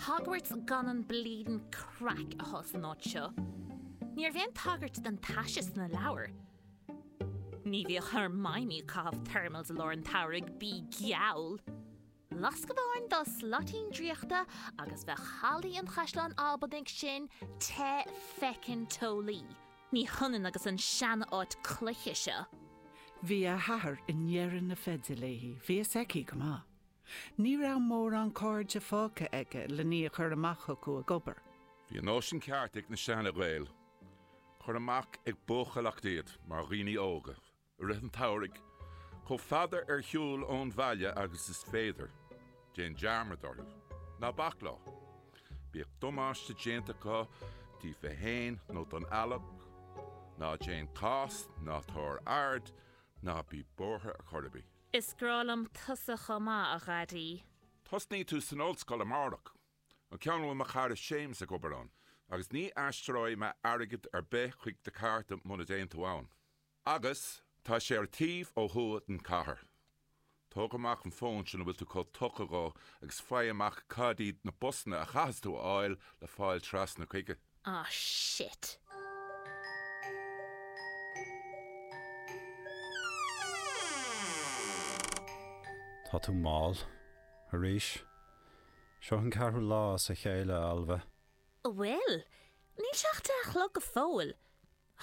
Hogwarts gan an bleedin craic atá san áit seo. Ní raibh aon tagairt don taise sna leabhair. Ní bhíodh Hermione ag caitheamh thermals i lár an tsamhraidh, bí geall! Lasc amháin dá slaitín draíochta agus bheadh hallaí an chaisleáin Albanaigh sin te feckin teolaí. Ní hionann agus an sean-áit cloiche seo. Bhí a hathair i ndeireadh na feide léi, bhí a fhios aici go maith. Ní raibh mórán cairde fágtha aige len í a chur amach chucu ag obair. Bhí an nóisean ceart ag na seana-Ghaeil cuir amach ag buachailleacht iad mar dhaoine óga i rith an tsamhraidh, chomh fada ar shiúl ón bhaile agus is féidir, déan dearmad orthu, ná bac leo, bíodh damáiste déanta acu díofa fhéin nó don eallach, ná déan cás, ná tabhair aird, ná bí buartha ar chor ar bith. Is grá liom tusa chomh maith, a Dhaidí. Tosnaíonn tú san ollscoil amárach, an ceann a bhfuil mo chara Séamas ag obair ann, agus ní aistreoidh mé airgead ar bith chuig do chárta muna dtéann tú ann. Agus tá sé ar an taobh ó thuaidh den chathair. Tóg amach an fón sin a bhfuil tú chomh tugtha dhó agus faigh amach cad iad na busanna a chaithfeas tú a fháil le fáil trasna chuige. Ah shit. Tá tú mall. Arís. Seo an ceathrú lá as a chéile, a Ailbhe. Bhuel, níl sé a deich a chlog go fóill.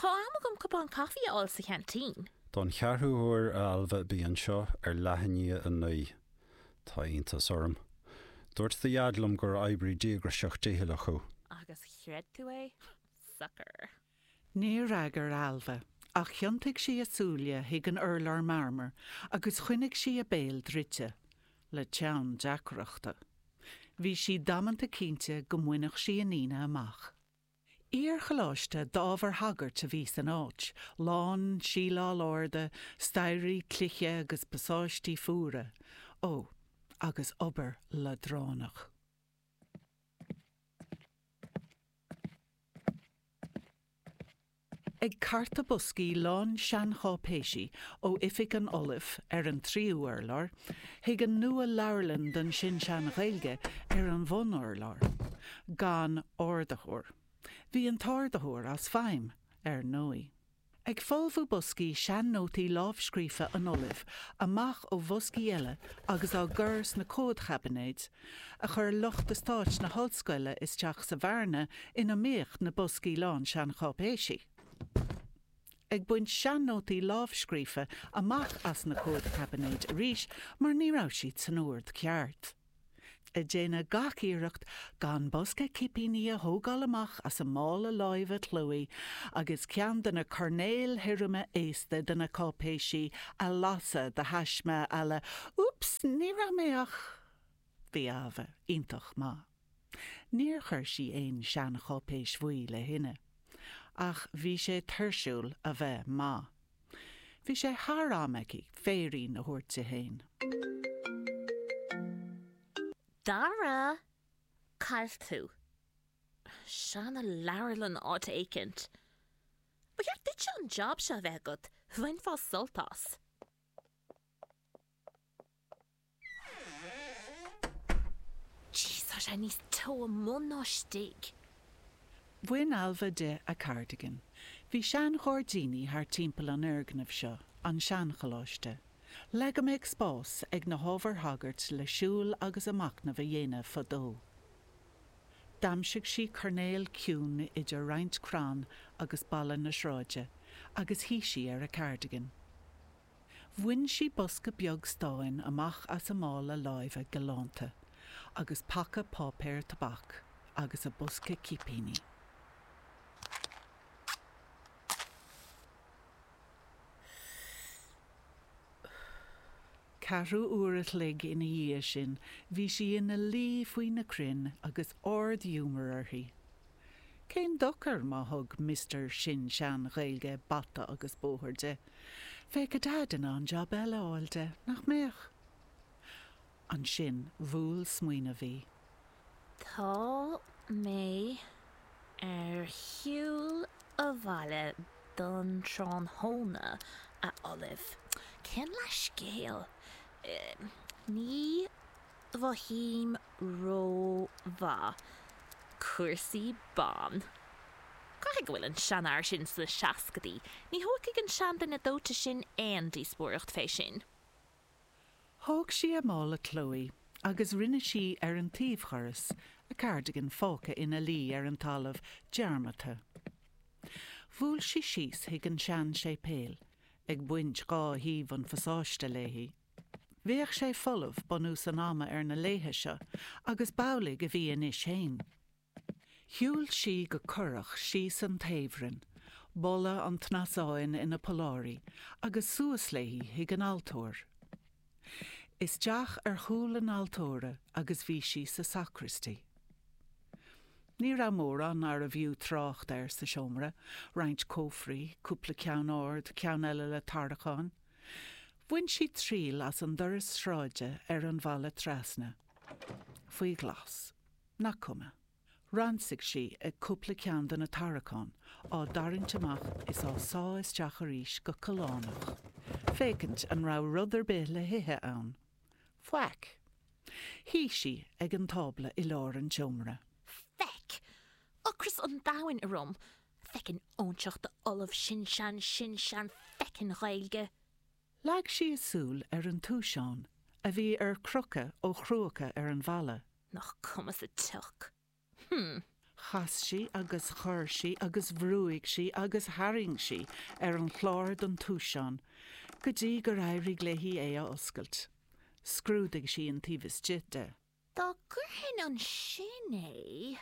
Tá am agam cupán caife a fháil sa cheaintín. Don cheathrú huair, a Ailbhe, bí anseo ar leath i ndiaidh a naoi. Tá iontas orm. Dúirt do dhaid liom gur oibrí díograiseach dícheallach thú. Agus chreid tú é? Sucker. Níor fhreagair Ailbhe, ach thiontaigh sí a súile chuig an urlár marmair agus choinnigh sí a béal druidte, le teann deacrachta. Bhí sí damanta cinnte go mbainfeadh sí an Aoine amach. Iar-choláiste d'ábhair shagairt a bhí san áit, lán síleáil arda, staighrí cloiche agus pasáistí fuara, ó, agus obair leadránach. Ag cartadh boscaí lán seancháipéisí ó oifig an Ollaimh ar an tríú urlár, chuig an nua-leabharlann don sin-sean-Ghaeilge ar an bhun-urlár, gan ardaitheoir. Bhí an t-ardaitheoir as feidhm, ar ndóigh. Ag folmhú boscaí sean-nótaí lámhscríofa an Ollaimh amach ó bhoscaí eile agus á gcur sna comhadchaibinéid, a chuir lucht eastáit na hollscoile isteach sa bhearna ina mbíodh na boscaí lán seancháipéisí. Ag baint sean-nótaí lámhscríofa amach as na comhadchaibinéid arís mar ní raibh siad san ord ceart. ag déanamh gach iarracht gan bosca cipíní a thógáil amach as a mála láimhe Chloé agus ceann de na coirnéil thirime aosta de na cáipéisí a lasadh de thaisme a la Úps, ní raibh mé ach. Bhí Almha iontach maith. Níor chuir sí aon seancháipéis bhuí le thine. Ach bhí sé tuirsiúil a bheith maith. Bhí sé thar am aici féirín a thabhairt di féin. Dara, cáil tú. Seanleabharlann áit éicint. Ba cheart duitse an job seo a bheith agat, bhainfeá sult as. Jeez, tá sé níos teo amuigh ná istigh! Bhain Almha di a cardigan. Bhí seanghairdíní thart timpeall an fhoirgnimh seo, an seancholáiste. Le go mbeadh spás ag na hábhair shagairt le siúl agus a macnamh a dhéanamh fadó. D'aimsigh sí coirnéal ciúin idir roinnt crann agus balla na sráide agus shuigh sí ar a cardigan. Bhain sí bosca beag stáin amach as a mála láimhe galánta agus paca páipéir tobac agus a bosca cipíní. Ceathrú uair a chloig ina dhiaidh sin bhí sí ina luí faoi na crainn agus ard-ghiúmar uirthi. Cén dochar má thug Mister Sin-Sean-Ghaeilge bata agus bóthar di? Bheadh a Deaid in ann jab eile a fháil di, nach mbeadh? Ansin bhuail smaoineamh í. Tá mé ar shiúl abhaile don tráthnóna, a Ollaimh. Cén leithscéal? Ní Mhothaím rómhaith cúrsaí ban. Caithfidh go bhfuil an seanfhear sin sna seascaidí. Ní thógfaidh an seanduine dóite sin aon díospóireacht fé sin. Thóg sí a mála Chloé agus rinne sí ar an taobhdhoras, a cardigan fágtha ina luí ar an talamh dearmadta. Bhuail sí síos chuig an sean-séipéal, ag baint dhá thaobh an phasáiste léi. Bheadh sé folamh, bunús an ama ar na laethe seo, agus b'amhlaidh a bhí anois fhéin. Shiúil sí go corrach síos an taobhroinn, boladh an tsnasáin ina polláirí, agus suas léi chuig an altóir. Isteach ar chúl an altóra agus bhí sí sa sacraistí. Ní raibh mórán arbh fhiú trácht air sa seomra, roinnt cófraí, cúpla ceann ard, ceann eile le tarracháin, Bhain sí triail as an doras sráide ar an bhfalla trasna. Faoi ghlas. Nach cuma. Ransaigh sí cúpla ceann de na tarraiceáin, á dtarraingt amach is á sá isteach arís go callánach, féachaint an raibh rud ar bith le hithe ann. Faic. Shuigh sí ag an tábla i lár an tseomra. Faic. Ocras an domhain orm. Feckin' óinseach de ollamh sin-sean-sin-sean-feckin'-Ghaeilge! Leag sí a súil ar an túiseán a bhí ar crocadh ó chrúca ar an bhalla. Nach cuma sa tsioc. Hm. Chas sí agus chor sí agus bhrúigh sí agus tharraing sí ar an chlár den túiseán go dtí gur éirigh léi é a oscailt. Scrúdaigh sí an taobh istigh de. Dá gcuirfinn ansin é.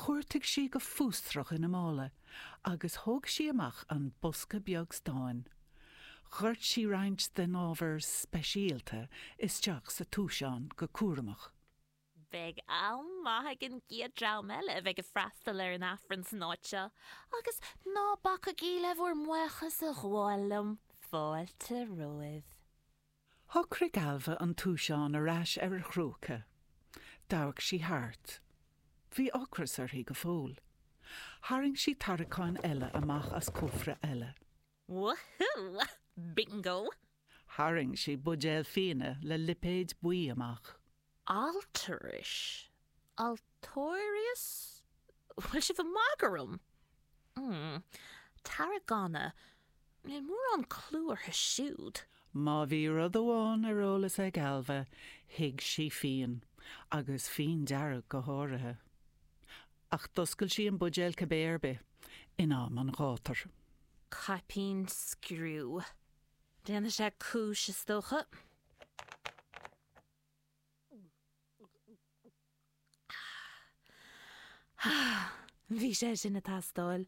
Chuartaigh sí go fústrach ina mála agus thóg sí amach an bosca beag stáin. Dhoirt sí roinnt den ábhar speisialta isteach sa túiseán go cúramach. Beidh am maith ag an gcéad dream eile a bheidh ag freastal ar an Aifreann san áit seo, agus ná bacaigí le bhur mbuíochas a ghabháil liom, fáilte romhaibh. Shocraigh Ailbhe an túiseán ar ais ar a chrúca. D'amharc sí thart. Bhí ocras uirthi go fóill. Tharraing sí tarraiceán eile amach as cófra eile. Wahoo! Bingo! Tharraing sí buidéal fíona le lipéad buí amach. Alturas? Altóirias? Bhfuil sibh ag magadh orm? Mmm. Tarragona. Níl mórán clú orthu siúd. Má bhí rud amháin ar eolas ag Ailbhe, thuig sí fíon. Agus fíon dearg go háirithe. Ach d'oscail sí an buidéal cibé ar bith, in am an ghátair. Caipín scriú. Déanfaidh sé cúis, is dócha. Bhí sé sin ag teastáil.